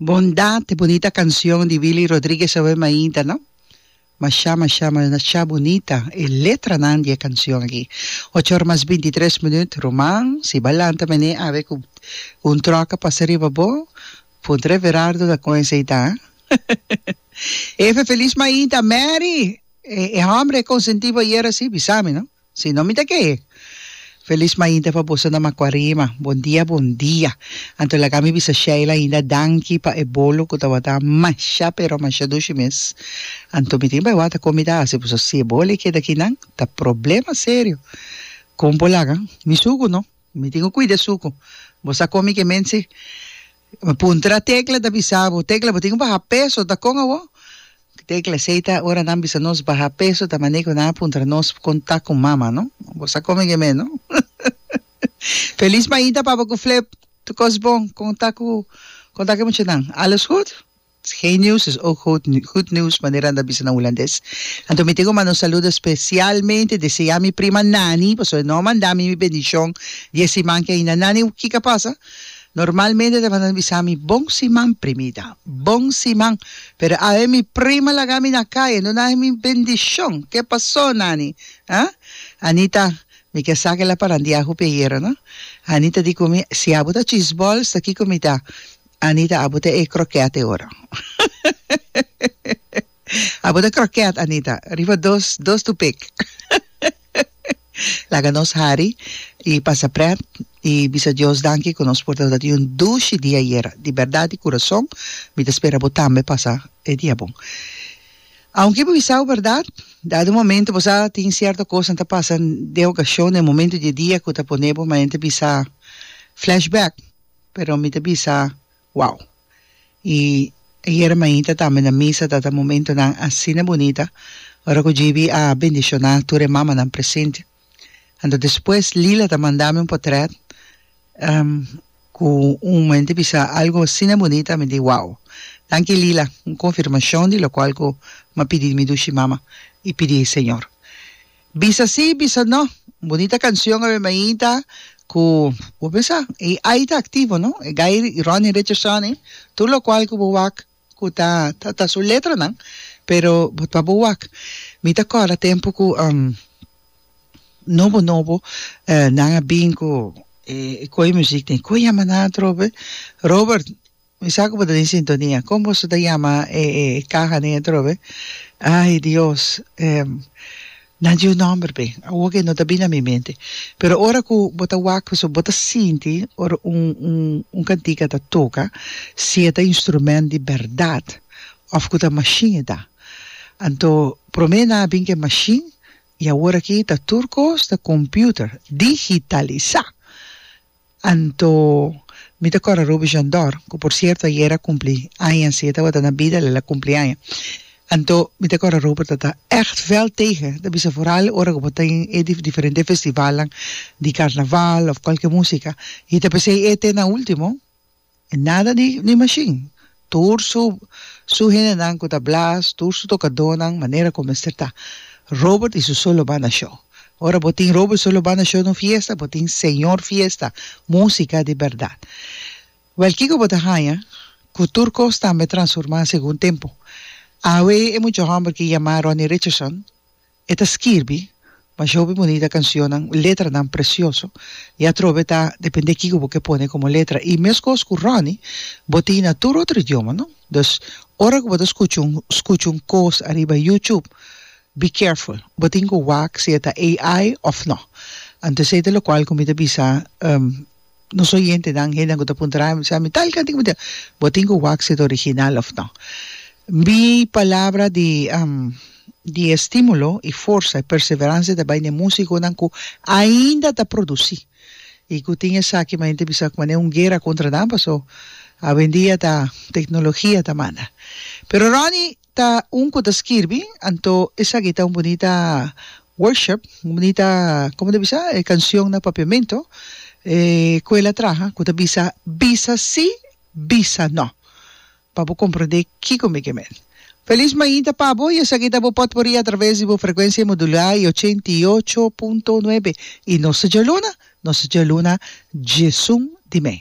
Bondad, e bunita cancion di Willy Rodriguez awe mainta no? Masha masha masha bunita e letranan di e cancion aki. Ocho or mas binti tres minuut, Ruman, si bo a lanta mene awe cu un truck a pasa riba bo, puntra Everardo ta con esey ta. Eve, feliz mainta, Mary, e hombre e consentibo ayer así, bisa mi no. Si no mi ta ke Feliz mainta pa boso na Macuarema. Bon dia bon dia. Anto laga mi bisa Sheila ainda danki pa e bolo cu tabata masha pero masha dushi mes. Anto mi tin bay wata con mi ta haci paso si e bolo e keda aki nan ta problema serio. Con bo laga mi sucu no? Mi tin cu cuida e sucu. Bo sa con mi ke mense Mi puntra Tecla ta bisa bo, Tecla bo tin baha peso ta con awo? Tecla, Esey ta ora nan bisa nos baha peso ta maney cu nan a puntra nos con ta cu mama no. Bo sa come ge me no. Feliz mainta papa cu Flip, tu cos bon con ta cu con ta cu muchanan, alles goed? Geen nieuws is ook goed nieuws manera nan ta bisa na Hulandes. Anto mi tin cu manda un saludo especialmente deseá mi prima Nani pasobra e no manda mi mi bendicion di e siman que ainda Nani kico a pasa? Normalmente ta manda bisa mi bon siman primita, bon siman pero awe mi prima laga mi na caye no nahe mi bendicion ke paso Nani? Ha? Anita, mi ke sa kela parandia hopi ayera no. Anita di cu mi si abo ta chisbol sta kico mi ta? Anita abo ta e croquet e ora abo ta croquet Anita riba dos dos tu pek laga nos hari y pasa pret y bisa Dios danki cu nos por ta di un dushi di ayera di berdad di curason mi ta spera bo tambe pasa e dia bon aunke bo bisabo berdad dado momento bo sa tin cierto cosnan ta pasa den ocasion den momento di e dia cu ta ponebo manera ta bisa flashback. Pero mi ta bisa, Wow! I ayera mainta tambe na misa tata momentonan asina bunita, ora ku JB a bendishoná tur e mamanan presente. Anto despues Lila ta manda mi un potrèt ku un momente bisa algu asina bunita, mi di, Wow! Danki Lila, un konfirmashon di lokual ku mi a pidi di mi dushi mama i pidi e Señor. Bisa sí, bisa no. Un bunita canción awe mainta cu bo pensa, ei ai ta activo, no? E Guy Ronnie Richardson, ei. Tur locual cu bo wak cu ta, ta, ta su letranan, pero bo ta bo wak. Mi ta corda tempo cu nobo, nobo nan a bin cu e coe muziek den. Coe yama nan atrobe? Robert. Mi sa cu bo ta den sintonia. Con boso ta yama e caha den e trobe? Ay Dios, nan dje un nomber be. Awo ke no ta bini na mi mente. Pero ora cu bo ta wak pasobra bo ta sinti ora un cantica ta toca si e ta instrument di berdad of cu ta machine e ta. Anto prome nan a bin cu e machine y aworaki ta tur cos ta computer, digitaliza. Anto mi ta kòrda Ruby Jondor, ku por sierto ayera a kumpli aña, si e tabata na bida el a kumpli aña. Anto mi ta kòrda Ruber ta ta ègt vèl tegen, ta bisa foral ora ku bo ta den e diferente festivalnan di karnaval òf kualke músika i ta p'esei e te na último. Nada di di mashin. Tur su su hendenan ku ta blaas, tur su tokadónan, manera ku mester ta. Robert i su Solo Banda Show. Ora bo tin Robert Solo Banda Show na un fiesta, bo tin señor fiesta, músika di bèrdat. Wèl kiko bo ta haña ku tur kos tambe transformá segun tempu? Awe e mucha hòmber ki yamá Ronnie Richardson, E ta skirbi bashá hopi bonita kansionnan, letranan presioso, i atrobe ta dependé kiko bo ke pone komo letra. I meskos ku Ronnie, bo tin na tur otro idioma, no? Dus, ora ku bo ta skucha un skucha un kos ariba YouTube, be careful, bo tin ku wak si e ta AI òf no. Anto esei ta lokual ku mi ta bisa. Nos oyentenan, hendenan ku ta puntra nan, mi bisa, mi tal kantika, mi tal, bo tin ku wak si ta original òf nò? Mi palabra di di estímulo i forsa i perseveransia ta bai na e músikonan ku ainda ta produsí i ku tin esaki mi hende bisa komo anei un guera kontra nan paso awendia ta teknologia ta manda. Pero Ronnie. Ta un cu ta skirbi, anto esaki ta un bunita worship, un bunita, como ta bisa? E cancion na Papiamento, e cu el a traha, cu ta bisa, Bisa si, bisa no. Pa bo comprende kico mi ke men. Feliz mainta pa bo y esaki ta bo potpourri atraves di bo frecuencia modulá y ochenta y ocho punto nuebe. Y nos ta djaluna, nos ta djaluna djesun di men.